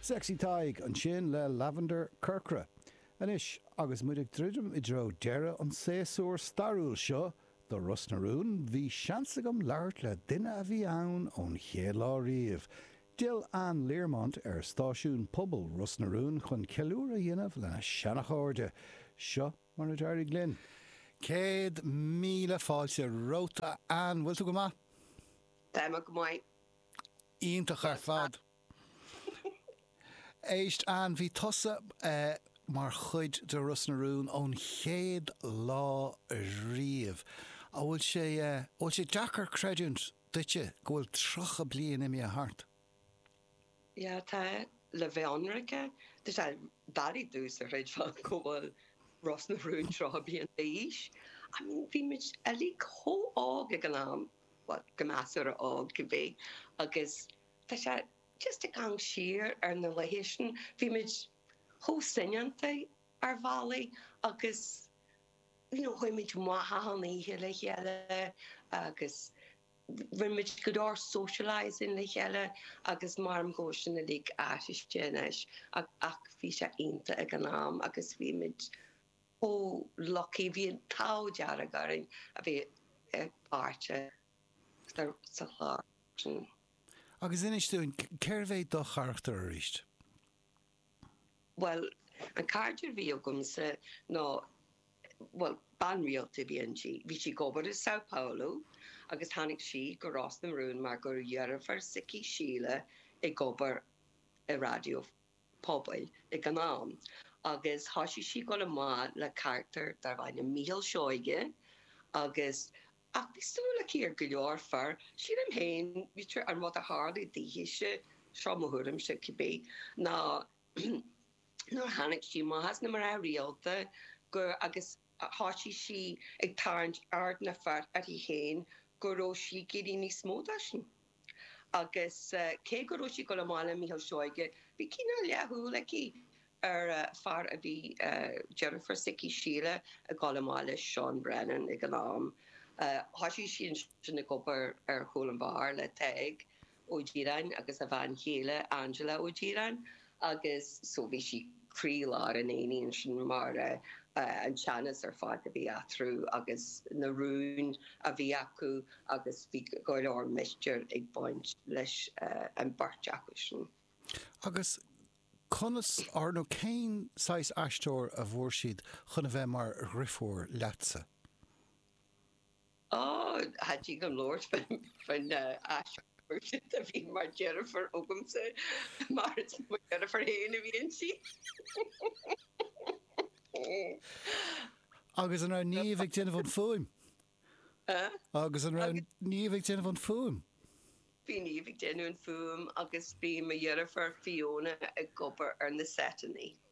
Sexy Tadhg, ansin le Lavender Corcra. Anois, agus muid ag druidim i dtreo deireadh an tséasúir stairiúil seo do Ros na Rún, bhí seans agam labhairt le duine a bhí ann ón chéad lá riamh. D'fhill Anne Learmont ar stáisiún pobail Ros na Rún chun ceiliúradh a dhéanamh lena seanchairde. Seo mar a d'éirigh linn. Céad míle fáilte romhat, a Anne. Bhfuil tú go maith? Tá mé go maith. Iontach ar fad. Éist, Anne, bhí tusa mar chuid de Ros na Rún ón chéad lá riamh. An bhfuil sé, an bhfuil sé deacair creidiúint duitse go bhfuil tríocha bliain imithe thart? Yeah, tá, le bheith ionraic, tá sé doiligh domhsa a chreidbheáil go bhfuil Ros na Rún tríocha bliain d'aois. I mean, bhí muid uilig chomh hóg ag an am. bhuel measartha óg cibé agus tá sé just ag gabháil siar ar na laetha sin. Bhí muid chomh soineanta ar bhealaí agus you know chuaigh muid amach achan oíche le chéile agus rinne muid go leor socialising le chéile agus maram go bhfuil sin uilig athraithe anois ach bhí sé iontach ag an am agus bhí muid chomh lucky, bhí an t-ádh dearg orainn a bheith páirteach sa chlár sin. Agus inis dúinn, cérbh é do charachtar arís? Bhuel, an carachtar a bhí agamsa ná, bhuel, bean rialta a bhí inti. Bhí sí ag obair i Sao Paulo agus tháinig sí go Ros na Rún mar go raibh deirfiúr s'aici, Síle, ag obair i Raidió pobail ag an am agus thoisigh sí ag dul amach le carachtar darb ainm Mícheál Seoige agus ach bhí súil aici ar go leor fear, sílim féin, b'fhéidir an rud a tharlaigh daoithese, seo mo thuairimse, cibé, ná nuair a tháinig sí amach as na mná rialta gur agus thoisigh sí ag tarraingt aird na bhfear uirthi féin go raibh sí ag iarraidh níos mó dó sin. agus cé go raibh sí ag dul amach le Mícheál Seoige, bhí cineál leathshúil aici ar fear a bhí deirfiúr s'aici, Síle, ag dul amach leis, Seán Brennan, ag an am. Thosaigh sí ansin ag obair ar chúl an bheáir le Tadhg Ó Díreáin agus a bhean chéile, Angela Ó Díreáin. agus so bhí sí croílár an aighnis sin mar an teannas ar fad a bhí eatarthu agus na rúin a bhí acu agus bhí go leor mistéir ag baint leis an bheirt acu sin. Agus conas, or nó cén saghas aisteoir a bhfuair siad chun a bheith mar dhriofúr leatsa? Ó, tá sí ag labhairt faoin aisteoir a bhí mar dheirfiúr agamsa, mar is mo dheirfiúr féin a bhí inti! Agus an raibh Niamh ag déanamh an fuaim? Agus an raibh Niamh ag déanamh an fuaim? Bhí Niamh ag déanamh an fuaim agus bhí mo dheirfiúr Fiona ag obair ar na seiteanna.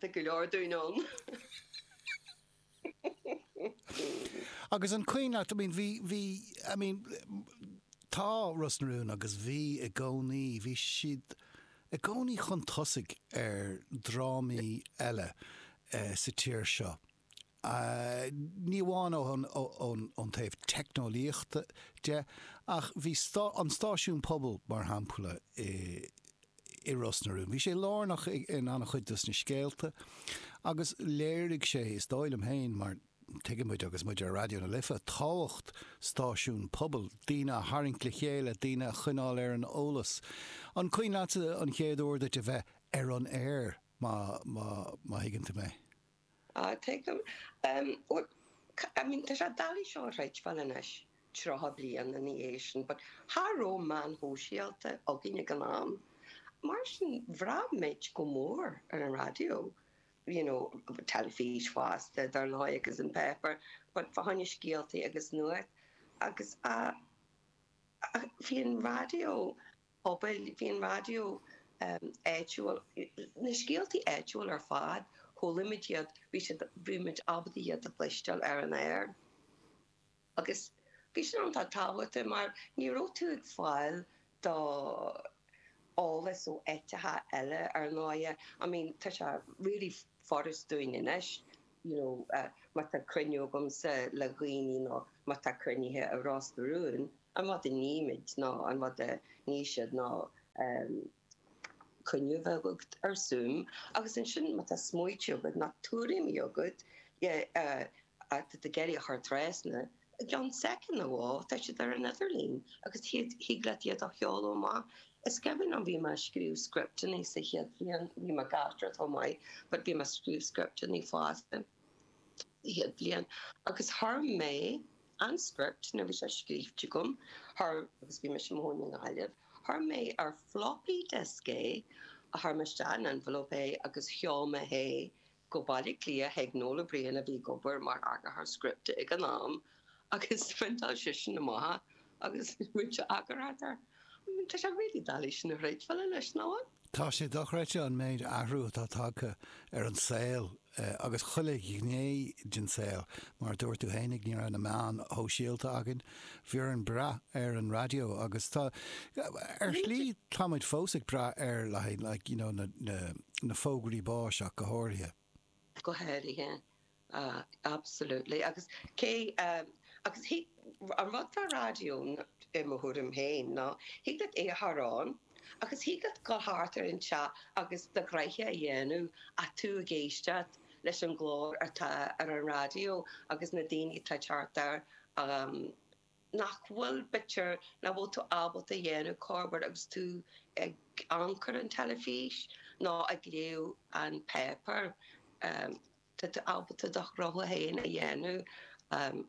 Tá go leor daoine ann. Agus an cuimhin leat, I mean bhí, bhí, I mean, tá Ros na Rún agus bhí i gcónaí, bhí siad i gcónaí chun tosaigh ar drámaí eile sa tír seo. ní amháin ón taobh teicneolaíochta de ach bhí an stáisiún pobail, mar shampla, i Ros na Rún, bhí sé lárnach in an-chuid dos na scéalta agus léirigh sé, is dóigh liom féin, mar tuigeann muid agus muid ar Raidió na Life, tábhacht stáisiún pobail, daoine a tharraingt le chéile, daoine a choinneáil ar an eolas. An cuimhin leatsa an chéad uair duit a bheith ar an aer, má thuigeann tú mé? Ah, tuigim. Em, bhuel, I mean, tá sé doiligh seo a chreidbheáil anois, tríocha bliain ina dhiaidh sin, but cha raibh meáin shóisialta againn ag an am, mar sin bhraith muid go mór ar an raidió, you know, teilifís fosta, dar ndóigh, agus an paper, but fá choinne scéaltaí agus nuacht, agus, ah, bhí an raidió. pobail, bhí an raidió áitiúil, na scéaltaí áitiúla ar fad, chuala muid iad, bhí siad, bhí muid ábalta iad a chloisteáil ar an aer. Agus bhí sin iontach tábhachtach mar ní raibh tú ag fáil do eolas ó áiteacha eile, ar ndóighe. I mean, tá sé really furast dúinn anois you know má tá cruinniú agamsa le dhaoine nó má tá cruinnithe i Ros na Rún, an rud a nímid nó an rud a ní siad ná ehm cruinniú a bheith agat ar Zoom agus ansin má tá smaoitiú agat nó tuairimí agat eh atá tú ag iarraidh a chur trasna. I gceann soicind nó dhó tá siad ar an idirlíon agus thig leat iad a sheoladh amach. Is cuimhin liom, bhí mé ag scríobh scripteanna sa chéad bhliain, bhí mé ag aisteoireacht chomh maith, but bhí mé ag scríobh scripteanna fosta sa chéad bhliain agus chuir mé an script, nuair a bhí sé scríofa agam, chuir, agus bhí mise i mo chónaí i nGaillimh, chuir mé ar floppy disk é, chuir mé isteach in envelope é agus sheol mé é Go Baile Cliath chuig Noel Ó Briain a bhí ag obair mar eagarthóir scripte ag an am agus phriontáil seisean na maithe agus roinnt eagarthóireachta. Tá sé really dallais sin a throid file leis, ná an? Tá sé dochreidte an méid athraithe atá tagtha ar an saol agus chuile ghné den saol. Mar a dúirt tú fhéinig, ní raibh na meáin shóisialta againn. Bhí orainn brath ar an raidió agus tá, ar shlí, tá muid fós ag brath air le haghaidh like you know na fógraí báis ach go háirithe. Go háirithe, absolutely agus cé, agus thig, an rud fá raidió i mo thuairim féin ná thig leat é a chur air agus thig leat dul thart ar an teach agus do ghraithe a dhéanamh agus tú ag éisteacht. leis an gclár atá ar an raidió agus na daoine atá thart ort nach bhfuil bitear nach bhfuil tú ábalta dhéanamh corbair agus tú ag amharc ar an teilifís ná ag léamh an pháipéir. Tá tú ábalta do ghraithe féin a dhéanamh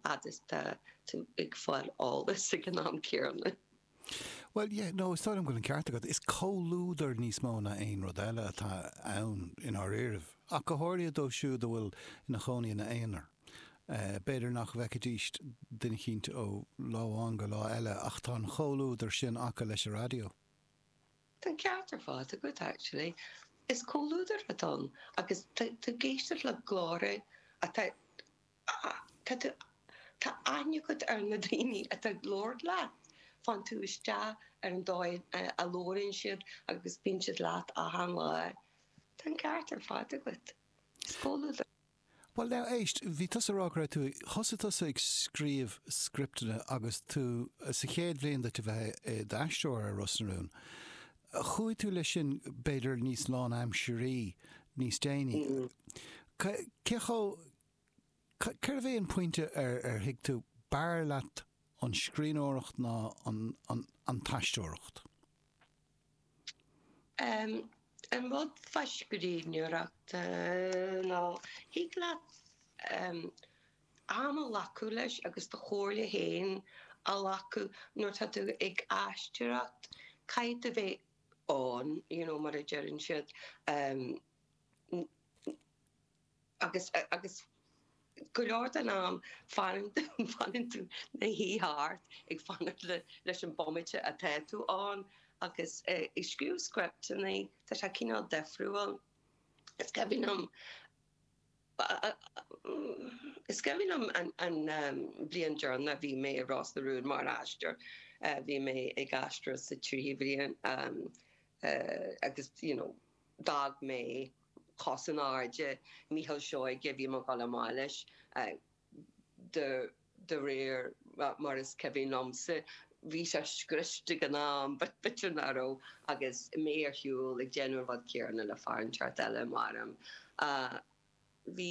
fhad is tá tú ag fáil eolas ag an am céanna. Bhuel, yeah, no, is dóigh liom go bhfuil an ceart agat. Is comhluadar níos mó ná aon rud eile atá ann i ndáiríribh, ach go háirithe dóibh siúd a bhfuil ina gcónaí ina n-aonar. B'fhéidir nach bhfeicfidíst duine eicínt ó lá amháin go lá eile ach tá an comhluadar sin acu leis an raidió. Tá an ceart ar fad agat, actually. Is comhluadar atá ann agus tú ag éisteacht le glórtha atá. Tá tú, tá aithne agat ar na daoine atá ag labhairt leat, fanann tú isteach ar an dóigh a labhraíonn siad agus bíonn siad leat achan lá. Tá an ceart ar fad agat. Is comhluadar. Bhuel now, éist, bhí tusa a rá go raibh tú, thosaigh tusa ag scríobh scripteanna agus tú sa chéad bhliain duit a bheith i d'aisteoir ar Ros na Rún. Chuaigh tú leis sin b'fhéidir níos lánaimseartha níos déanaí. Cé chomh, Cérbh é an pointe ar ar thuig tú b'fhearr leat an scríbhneoireacht ná an aisteoireacht? An rud fá scríbhneoireacht ná thig leat am a ghlacadh leis agus do chomhairle féin a ghlacadh. Nuair atá tú ag aisteoireacht caithfidh tú bheith ann, you know, mar a deireann siad. agus agus go leor den am bíonn tú i do shuí thart ag fanacht leis an bomaite atá tú ann agus ag scríobh scripteanna tá sé cineál difriúil is cuimhin liom is cuimhin liom an bliain deireanach bhí mé i Ros na Rún mar aisteoir bhí mé ag aisteoireacht sa tríú bhliain agus you know d'fhág mé cos in airde Micheál Seoighe, bhí mé ag dul amach leis, de réir mar is cuimhin liomsa, bhí sé scriosta ag an am, b'fhéidir nach raibh, agus mé ar siúl ag déanamh an rud céanna le fear an tseort eile, marab ea bhí.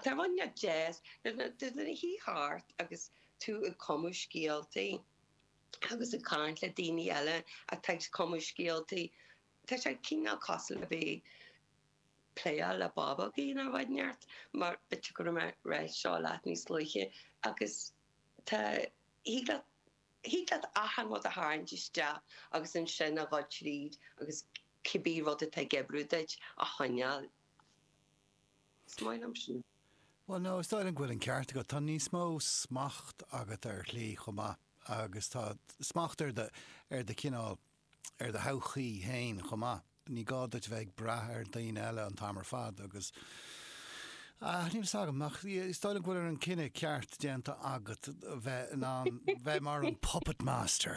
Táim ann le deis duit a shuí thart agus tú ag cumadh scéalta agus ag caint le daoine eile atá ag cumadh scéalta. Tá sé cineál cosúil le bheith ag pléáil le bábógaí in ár bhfaid neart mar tiocfadh an raic seo leat níos luaithe agus tá thig leat achan rud a tharraingt isteach agus ansin a dhul tríd agus cibé rud atá ag oibriú duit a choinneáil. Is maith liom sin. Bhuel no, is dóigh liom go bhfuil an ceart agat. Tá níos mó smacht agat ar shlí chomh maith agus tá smacht ar do ar do chineál ar do thodhchaí féin chomh maith. Ní gá duit bheith ag brath ar dhaoine eile an t-am ar fad agus tá a fhios agat is dóigh liom go bhfuil an cinneadh ceart déanta agat bheith in ann bheith mar an puppet master.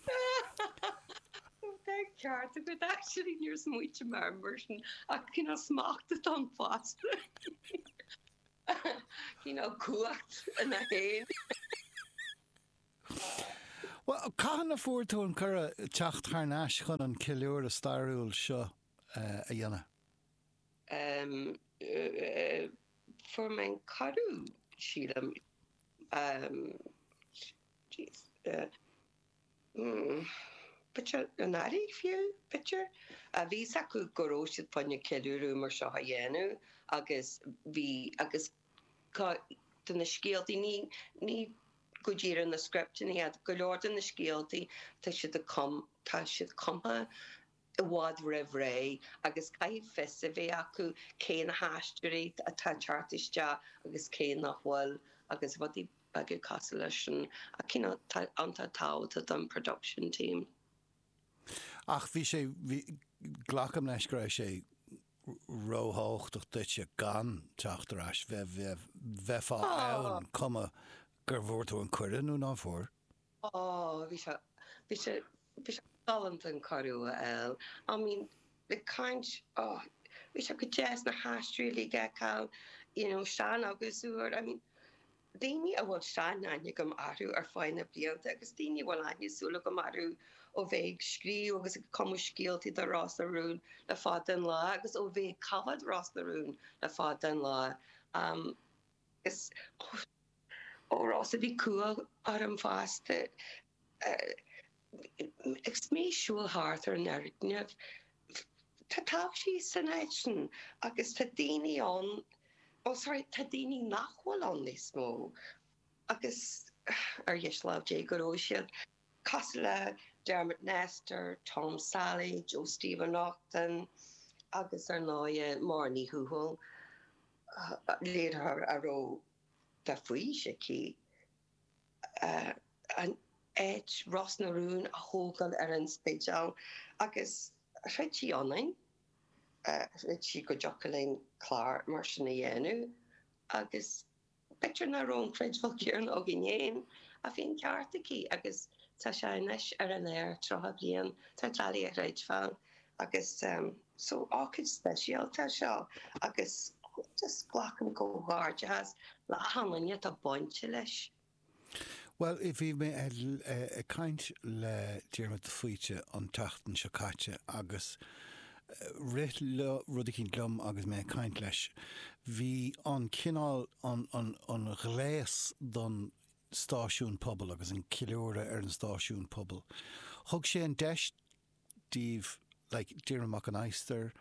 Tá an ceart agat actually, níor smaointigh mé air mar sin ach cineál smacht atá ann fosta, cineál cumhacht i ndáiríre. Bhuel, cathain a fuair tú an cuireadh teacht thar n-ais chun an ceiliúradh stairiúil seo a dhéanamh? Em. fuair mé an cuireadh, sílim, em. jeez. b'fhéidir anuraidh, fiú, b'fhéidir. Bhí a fhios acu go raibh siad chun ceiliúradh mar seo a dhéanamh agus bhí, agus. Tá de na scéaltaí, ní go díreach na scripteanna, go leor de na scéaltaí, tá siad tá siad cumtha i bhfad roimh ré agus caithfidh fios a bheith acu cé na haisteoirí atá ag teacht isteach agus cé nach bhfuil agus rudaí beaga cosúil leis sin ach you know tá sé tábhachtach don production team. Ach bhí sé, bhí, glacaim leis go raibh sé róthábhachtach duitse gan teacht ar ais, bheith, bheith, bheifeá ann cuma gur bhfuair tú an cuireadh nó ná fuair? Ó, bhí sé, bhí sé, bhí sé galánta an cuireadh a fháil. I mean, like caint, ó, bhí sé go deas na haisteoirí a fheiceáil, you know, sean agus úr, I mean, daoine a bhfuil seanaithne agam orthu ar feadh na blianta agus daoine a bhfuil aithne súl agam orthu ó bheith ag scríobh agus ag cumadh scéalta do Ros na Rún le fada an lá agus ó bheith ag coimheád Ros na Rún le fada an lá. Is ar ndóigh bhí cumha orm fosta. Is mé siúl thart ar an fhoirgneamh. Tá taibhsí san áit sin agus tá daoine ann, bhuel, sorry, tá daoine nach bhfuil ann níos mó agus ar dheis lámh Dé go raibh siad, cosúil le Dermot Nestor, Tom Sally, Joe Steve Ó Neachtain agus ar ndóigh Máire Ní Thuathail, léiritheoir a raibh de bhaois aici. an áit Ros na Rún a thógáil ar an Spidéal agus chreid sí ionainn, chreid sí go dtiocfadh linn clár mar sin a dhéanamh agus b'fhéidir nach raibh an chreidbheáil chéanna againn féin ach bhí an ceart aici agus tá sé anois ar an aer tríocha bliain, tá sé doiligh a chreidbheáil agus. so ócáid speisialta é seo agus just glacaim comhghairdeachas le achan duine atá bainte leis. Bhuel, bhí mé ag caint le Diarmuid de Faoite an tseachtain seo caite agus rith rud eicínt liom agus mé ag caint leis. Bhí an cineál, an ghléas don stáisiún pobail agus an ceiliúradh ar an stáisiún pobail, thug sé an deis díobh, like Diarmuid Mac an Adhastair,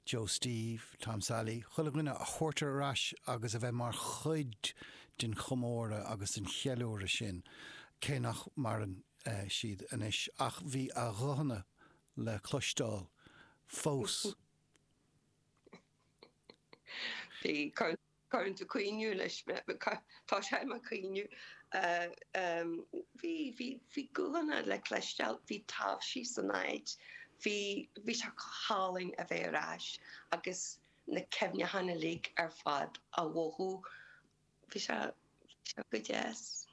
Joe Steve, Tom Sailí, chuile dhuine a thabhairt ar ais agus a bheith mar chuid den chomóradh agus den cheiliúradh sin, cé nach maireann siad anois, ach bhí a nguthanna le cloisteáil fós. Bhí cóisir Cuireann tú ag caoineadh leis tá sé ag caoineadh. Bhí guthanna le cloisteáil, bhí taibhsí san áit, bhí sé go hálainn a bheith ar ais agus na cuimhneacháin uilig ar fad a mhothú. Bhí sé go deas.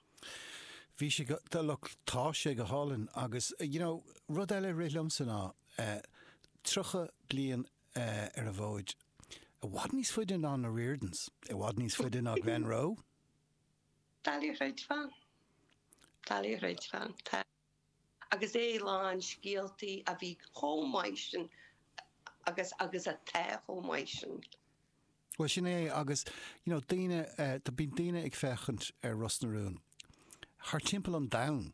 Bhí sé go, look, tá sé go hálainn agus, you know, rud eile a rith liomsa ná 30 bliain ar an bhfód, i bhfad níos faide ná na Riordans, i bhfad níos faide ná Glenroe. Doiligh a chreidbheáil. Doiligh a chreidbheáil, tá. Agus é lán scéaltaí a bhí chomh maith sin agus agus atá chomh maith sin. Bhuel sin é agus you know daoine, bíonn daoine ag féachaint ar Ros na Rún thar timpeall an domhain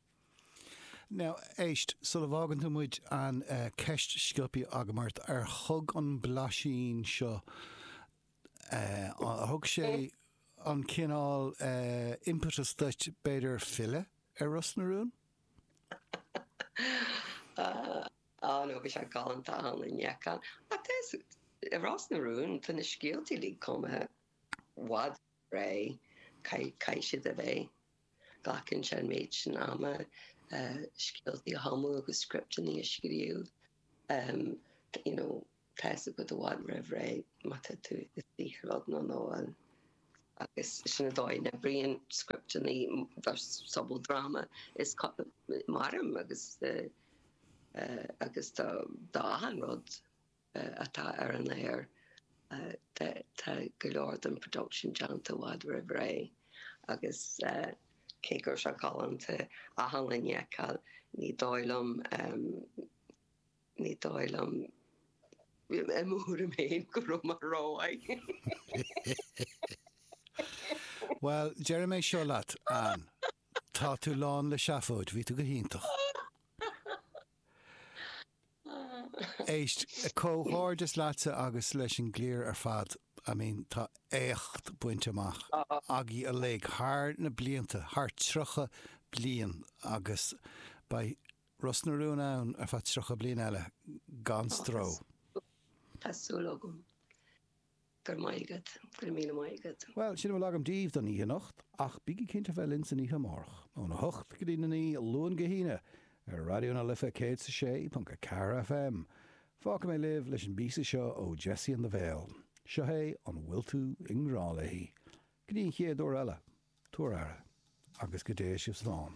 Now, éist, sula bhfágann tú muid, an ceist sciobtha agam ort, ar thug an blaisín seo, ar thug sé an cineál impetus duit, b'fhéidir, filleadh ar Ros na Rún? Á, no bhí sé galánta ann i ndiaidh. Ach, i Ros na Rún, tá na scéalta uilig cumtha i bhfad ré, caith, caithfidh siad a bheith. Glacann sé an méid sin ama scéaltaí a chumadh agus scripteanna a scríobh, you know, tá fhios agat i bhfad roimh ré má tá tú i saothar beag nó nach bhfuil agus sin an dóigh a n-oibríonn scripteanna do sobaldráma, is mairim agus, eh, agus do, do achan rud. atá ar an aer, tá go leor den production déanta i bhfad roimh ré agus cé go raibh sé galánta achan duine a fheiceáil, ní dóigh liom, ní dóigh liom, i mo thuairim fhéin, go raibh mé rómhaith. Bhuel, deirim é seo leat, Anne. Tá tú lán le seafóid. Bhí tú go hiontach. Éist, comhghairdeas leatsa agus leis an gcliar ar fad. I mean, tá éacht bainte amach agaibh uilig thar na blianta, thar 30 bliain agus beidh Ros na Rún ann ar feadh 30 bliain eile gan stró. Tá súil agam. Go raibh maith agat. Go raibh míle maith agat. Bhuel, sin a bhfuil agam daoibh don oíche anocht, ach bígí cinnte a bheith linn san oíche amárach, óna hocht go dtí na naoi, Luan go hAoine, ar Raidió na Life 106.4 FM. Fágfaidh mé libh leis an bpíosa seo ó Jessie and the Veil. Seo é An Bhfuil Tú i nGrá Léi? Go dtí an chéad uair eile, tabhair aire, agus go dté sibh slán.